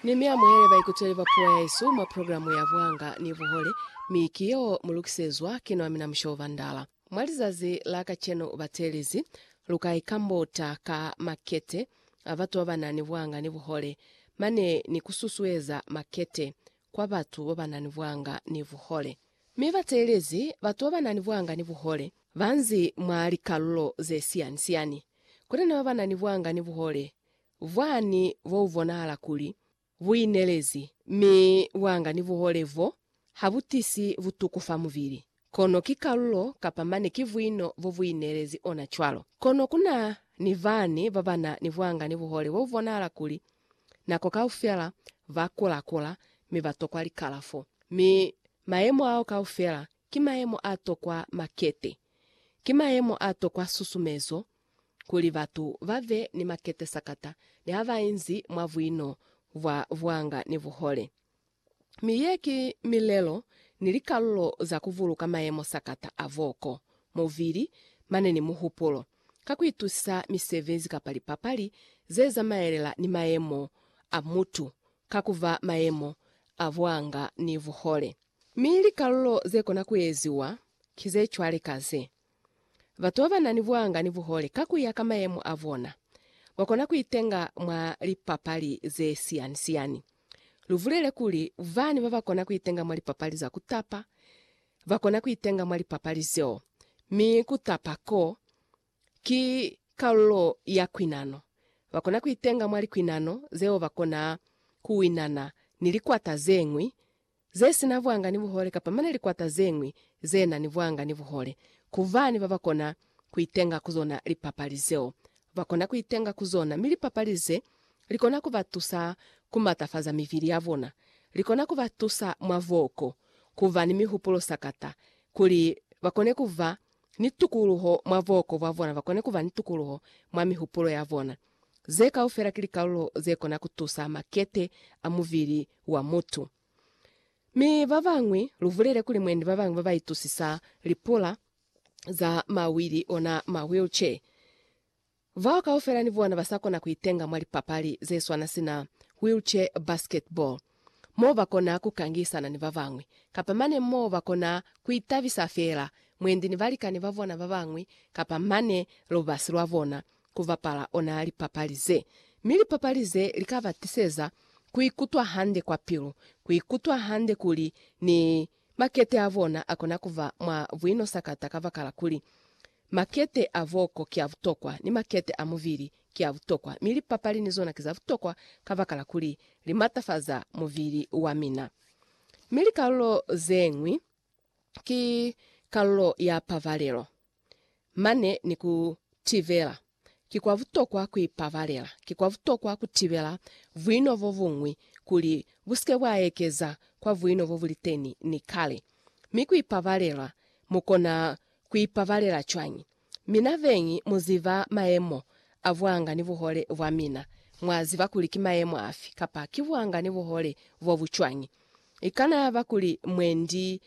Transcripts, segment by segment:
Ni mi amuhele baikuteli ba puo yaesu mwa programu ya Buhanga ni Buhole, mi ki yeo mu lukisezwa ki nwa mina Mushobo Bandala. Mwa lizazi la kacenu batelezi, lu ka ikambota ka makete a batu ba ba na ni buhanga ni buhole, mane ni ku susueza makete kwa batu ba ba na ni buhanga ni buhole. Mi batelezi, batu ba ba na ni buhanga ni buhole, ba nzi mwa likalulo ze siani-siani. Kuli na ba ba na ni buhanga ni buhole Vwani bo ubonahala kuli buinelezi mi bwanga ni buhole bo ha bu tisi butuku fa mubili. Kono ki kalulo kapa mane ki buino bo buinelezi ona cwalo. Kono kuna ni bani babana ni bwanga ni buhole bo bubonahala kuli nako kaufela ba kula-kula mi ba tokwa likalafo. Mi mayemo ao kaufela ki mayemo a tokwa makete. Ki mayemo a tokwa susumezo kuli batu ba be ni makete sakata ni ha ba inzi mwa buino bwa buanga ni buhole. Mi ye ki milelo ni likalulo za ku buluka mayemo sakata a boko, mubili, mane ni muhupulo, ka ku itusisa misebezi kapa lipapali ze zamaelela ni mayemo a mutu ka ku ba mayemo a buanga ni buhole. Mi likalulo ze kona ku eziwa ki ze cwale ka ze. Batu babanani buhanga ni buhole ka kuya ka mayemo abona, bakona kuitenga mwa lipapali zesiyani-siyani. Lubulele kuli, bani babakona kuitenga mwa lipapali za kutapa, bakona kuitenga mwa lipapali zeo, mi kutapa ko ki kalulo ya kwinano. Bakona kuitenga mwa likwinano zeo bakona kuwinana ni likwata zeñwi, ze si na vwanga ni buhole kapa mane likwata ze ñwi ze na ni vwanga ni buhole, ku bani ba ba kona ku itenga ku zona lipapali zeo. Ba kona ku itenga ku zona, mi lipapali ze li kona ku ba tusa ku matafaza mivili ya bona. Li kona ku ba tusa mwa voko, ku ba ni mihupulo sakata, kuli ba kone ku ba ni tukuluho mwa voko bwa bona, ba kone ku ba ni tukuluho mwa mihupulo ya bona. Ze kaufela ki likalulo ze kona ku tusa makete a mubili wa mutu. Mi ba bañwi, lu bulele kuli mwendi ba bañwi ba ba itusisa lipula za mawili, ona ma wheelchair. Bao kaufela ni bona ba sa kona ku itenga mwa lipapali ze swana sina wheelchair basketball. mo ba kona ku kangisana ni ba bañwi, kapa mane mo ba kona ku itabisa feela mwendi ni balikani ba bona ba bañwi kapa mane lubasi lwa bona ku bapala ona lipapali ze. Mi lipapali ze li ka ba tiseza ku ikutwa hande kwa pilu, ku ikutwa hande kuli ni Makete a bona a kona ku ba mwa buinosakata kabakala kuli, makete a boko ki a butokwa, ni makete a mubili ki a butokwa, mi lipapali ni zona ki za butokwa kabakala kuli li matafaza mubili wa mina. Mi likalulo ze ñwi ki kalulo ya pabalelo. mane ni ku tibela. Ki kwa butokwa ku ipabalela. Ki kwa butokwa ku tibela buino bo buñwi kuli bu si ke bwa ekeza kwa buino bo bu li teni ni kale. Mi ku ipabalela, mu kona ku ipabalela cwañi? Mina beñi mu ziba mayemo a buanga ni buhole bwa mina. Mwa ziba kuli ki mayemo afi kapa ki buanga ni buhole bo bu cwañi. I kana yaba kuli mwendi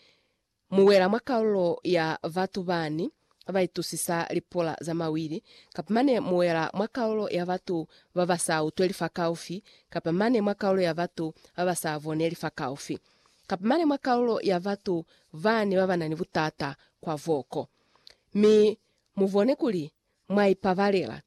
Mu wela mwa kalulo ya batu bani ba itusisa lipula za mawili, kapa mane mu wela mwa kalulo ya batu ba ba sa utweli fakaufi, kapa mane mwa kalulo ya batu ba ba sa boneli fakaufi, kapa mane mwa kalulo ya batu bani ba ba na ni butata kwa boko. Mi mu bone kuli mwa ipabalela,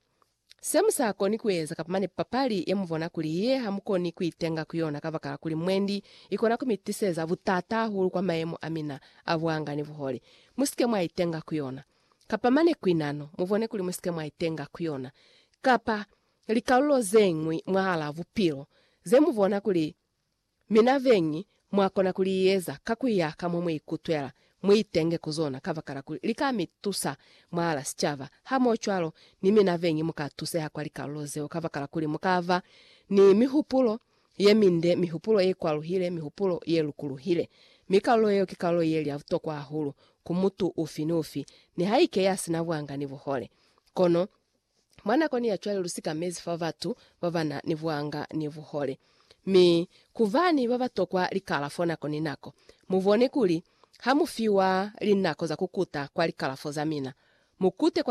Se mu sa koni ku eza kapa mane papali ye mu bona kuli ye ha mu koni ku itenga ku yona kabakala kuli mwendi i kona ku mi tiseza butata hahulu kwa mayemo a mina a buanga ni buhole, mu si ke mwa itenga ku yona. Kapa mane ku inano, mu bone kuli mu si ke mwa itenga ku yona, kapa likalulo ze ñwi mwahal'a bupilo, ze mu bona kuli Mi na beñi, mwa kona ku li eza ka ku ya ka mo mu ikutwela. Mu itenge ku zona, kabakala kuli li ka mi tusa mwahala sicaba. Hamohocwalo, ni mi na beñi mu ka tuseha kwa likalulo zeo kabakala kuli mu ka ba ni mihupulo ye minde, mihupulo ye kwaluhile, mihupulo ye lukuluhile. Mi kalulo yeo ki kalulo ye li ya butokwa hahulu ku mutu ufi ni ufi, nihaike ya si na buanga ni buhole. Kono, Mwa nakoni ya cwale lu sikamezi fa batu ba ba na ni buanga ni buhole. Mi, ku ba ni ba ba tokwa likalafo nako ni nako. Mu bone kuli, ha mu fiwa linako za ku kuta kwa likalafo za mina, mu kute kwa